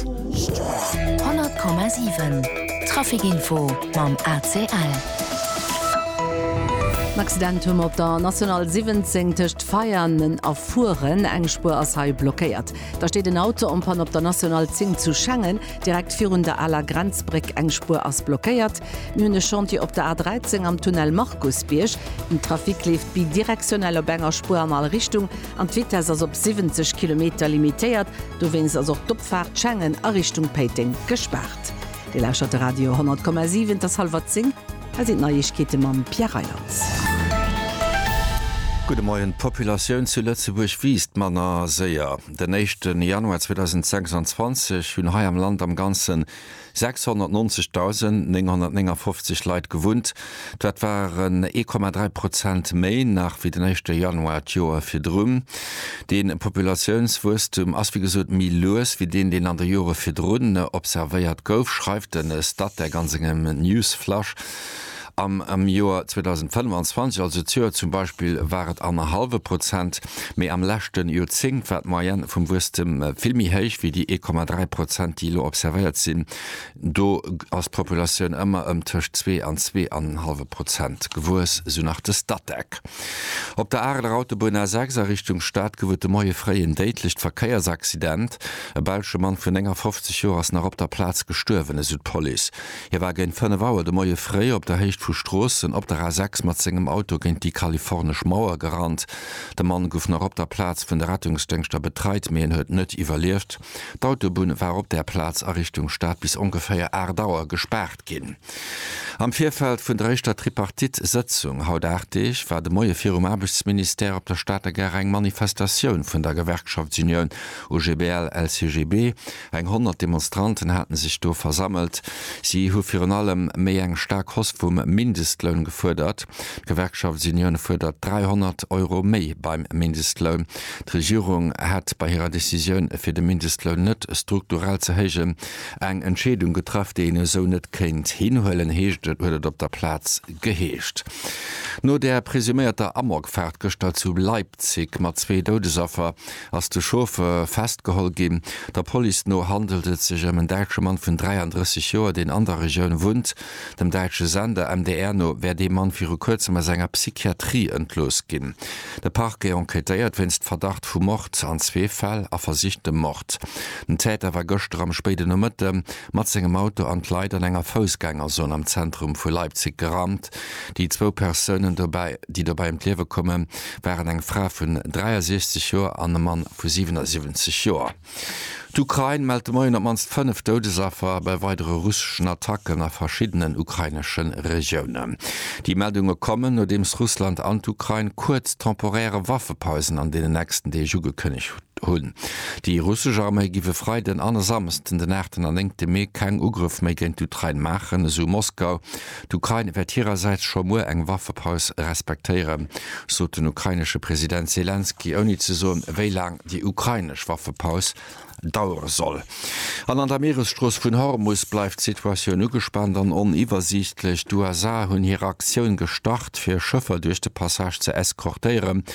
100,7 Trafic info mam ACL. En Accident hu mer op der National 17 tëscht Veianen a Furen. Eng Spuer ass hei blockéiert. Da steet en Auto en panne op der National 10 zu Schengen, direkt virun der aler Grenzbréck. Eng Spuer ass blockéiert. Mir hunn e Chantier op der A 13 am Tunnel Markusbierg. Den Trafic leeft bidirektionell op enger Spuer an all Richtung an d'Vitess ass op 70 Kilometer limitéiert. Dowéinst ass och d'Opfaart Schengen a Richtung Péiteng gespaart. Dir lauschtert de Radio 10,7, et ass hallwer 10, hei sinn d'Neiegkeete mam Pierre Reyland. Gudde Moien, D'Populatioun zu Lëtzebuerg wiisst manner séier. Den éischte Januar 2026 hunn hei am Land am Ganzen 690.959 Leit gewunnt, dat waren 1,3 Prozent méi nach wéi den éischte Januar d'Joer virdrun. Dee Populatiounswuesstum ass wéi gesot méi lues wéi deen, deen an de Jore virdrun observéiert gouf, schreift de Statec a sengem Newsflash. Am am Joer 2025, also d'Joer zum Beispill, war et annerhallwe Prozent, mee am leschte Joerzéngt war d'Moyenne vum Wuesstem vill méi héich wéi déi 1,3 Prozent, déi elo observéiert sinn. Do ass d'Populatioun ëmmer ëm tëscht zwee an zwee an en hallwe Prozent gewuess, esou nach de Statec. Op der Areler Autobunn A6 a Richtung Stad gouf et de Moie fréi en déidlecht Verkéiersaccident. E belsche Mann vun 59 Joer ass nach op der Plaz gestuerwen, esou d'Police. Hie war géint 5 Auer de Moie fréi op der Héicht vu Stroossen op der A 6 mat sengem Auto géint déi kalifornesch Mauer gerannt. De Mann gouf nach op der Plaz vun de Rettungsdéngschter betreit, mee en huet net iwwerlieft. D'Autobunn war op där Plaz a Richtung Stad bis ongeféier 8 Auer gespaart ginn. Am Virfeld vun der éischter Tripartite-Sëtzung, haut 8 Deeg, war de Moie virum Aarbechtsministère op der Stater Gare eng Manifestatioun vun der Gewerkschaftsunioun OGBL-LCGB, Eng honnert Demonstranten hate sech do versammelt. Si hu virun allem méi eng staark Hoss vum Mindestloun gefuerdert. D'Gewerkschaft Union fuerdert 300 Euro méi beim Mindestloun. D'Regierung hätt bei hirer Decisioun, fir de Mindestloun net strukturell ze héijen, eng Entscheedung getraff, déi een esou net kéint hinhuelen, heescht et, huet et op der Plaz geheescht. No der presuméierter Amokfaart gëschter zu Leipzig mat zwee Doudesaffer, ass de Chauffeur festgeholl ginn. Der Police no handelt et sech ëm en däitsche Mann vun 33 Joer, deen an der Regioun wunnt. Dem däitsche Sender MDR no wär dee Mann viru kuerzem aus enger Psychiatrie entlooss ginn. De Parquet enquêtéiert wéinst Verdacht vu Mord an zwee Fäll a versichtem Mord. Den Täter war gëschter am spéiden Nomëtte mat sengem Auto an d'Leit an enger Foussgängerzon am Zentrum vu Leipzig gerannt. Déi zwou Persounen, déi dobäi ëm d'Liewe koume waren eng Fra vun 63 Joer an e Mann vu 77 Joer. D'Ukrain mellt de Moien op d'mannst fënnef Doudesaffer bei weidere russeschen Attacken a verschiddenen ukrainesche Regiounen. Déi Meldunge kommen, nodeems Russland an d'Ukrain kuerz temporäre Waffepausen an deenen nächsten Deeg ugekënnegt hunn. Déi russesch Arméi giff e Freiden an e Samsden, den aachten an néngte Mee, keng Ugrëff méi géint d'Ukrain maachen, esou Moskau. D'Ukrain wäert hirersäits scho muer eng Waffepaus respektéieren, sot den ukrainesche President Selenskyj, ouni ze soen, wéi laang déi ukrainesch Waffepaus dauere soll. An an der Mieresstrooss vun Hormus bleift d'Situatioun ugespaant an oniwwersiichtlech. D'USA hunn hir Aktioun gestart, fir Schëffer duerch de Passage ze eskortéieren.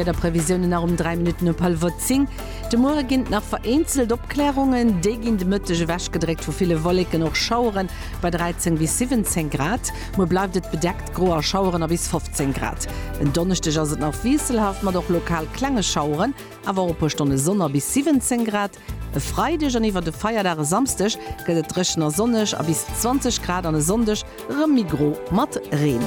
D'Wiederprevisiounen nach um 3 Minutten op hallwer 10. De Muere ginn et nach vereenzelt Opklärungen, déi ginn de Mëtteg ewechgedréckt vu ville Wolleken, och Schauere bei 13 bis 17 Grad. Muer bleift et bedeckt, gro a Schaueren a bis 15 Grad. En Donneschdeg ass et nach wiesselhaft mat och lokal klenge Schaueren, awer och e puer Stonne Sonn a bis 17 Grad. E Freideg an iwwer de Feierdag e Samsdeg gëtt et dréchen a sonneg a bis 20 Grad an e Sonndeg erëm méi gro mat Reen.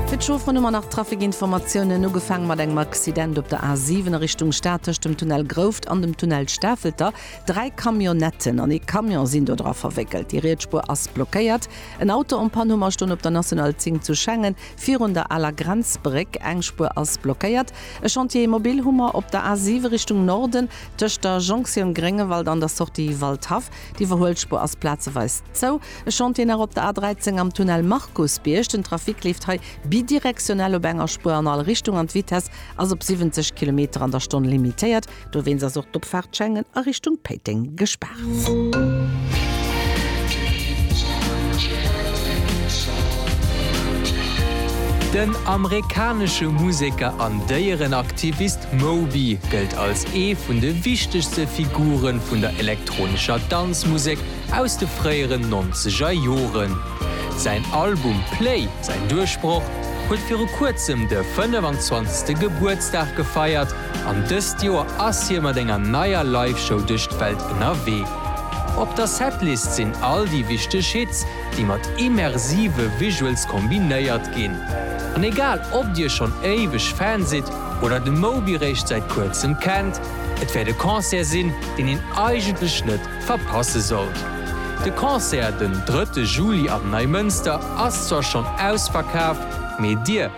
Fir d'Schof ronn um an nach Trafikinformatiounen, ugefaange mat engem Accident op der A7 a Richtung Stad tëscht dem Tunnel Grouft an dem Tunnel Stafelter. Dräi Camionnetten an ee Camion sinn dodra verwéckelt. Déi riets Spuer ass blockéiert. En Auto en Panne hu mer stonn op der National 10 zu Schengen. Virun der aler Grenzbréck, eng Spuer ass blockéiert. E Chantier mobile hu mer op der A 7 Richtung Norden, tëscht der Jonktioun Gréngewald an der Sortie Waldhaff. D'Iwwerhuelspuer ass plazeweis zou. E Chantier nach op der A 13 am Tunnel Markusbierg. Den Trafic leeft hei bidirektionell op enger Spuer an all Richtung an d'Vitesse ass op 70 Kilometer an der Stonn limitéiert. Dowéinst ass och d'Opfaart Schengen a Richtung Péiteng gespaart. Den amerikanesche Museker an Déierenaktivist Moby gëllt als ee vun de wichtegste Figure vun der elektronescher Danzmusek aus de fréieren nonzeger Joren. Säin Album Play, säin Duerchbroch, huet viru kuerzem de 25. Gebuertsdag gefeiert An dëst Joer ass hie mat enger neier Live-Show duerch d'Welt ënnerwee. Op der Setlist sinn all déi wichteg Hits, déi mat immersive Visuals kombinéiert ginn. An egal ob dir schonn éiweg Fan sidd oder de Moby réischt säit kuerzem kennt, et wäert e Concert sinn, deen een eigentlech net verpasse sollt. De Concert den drëtte Juli am Neimënster ass zwar schonn ausverkaf, mee dir,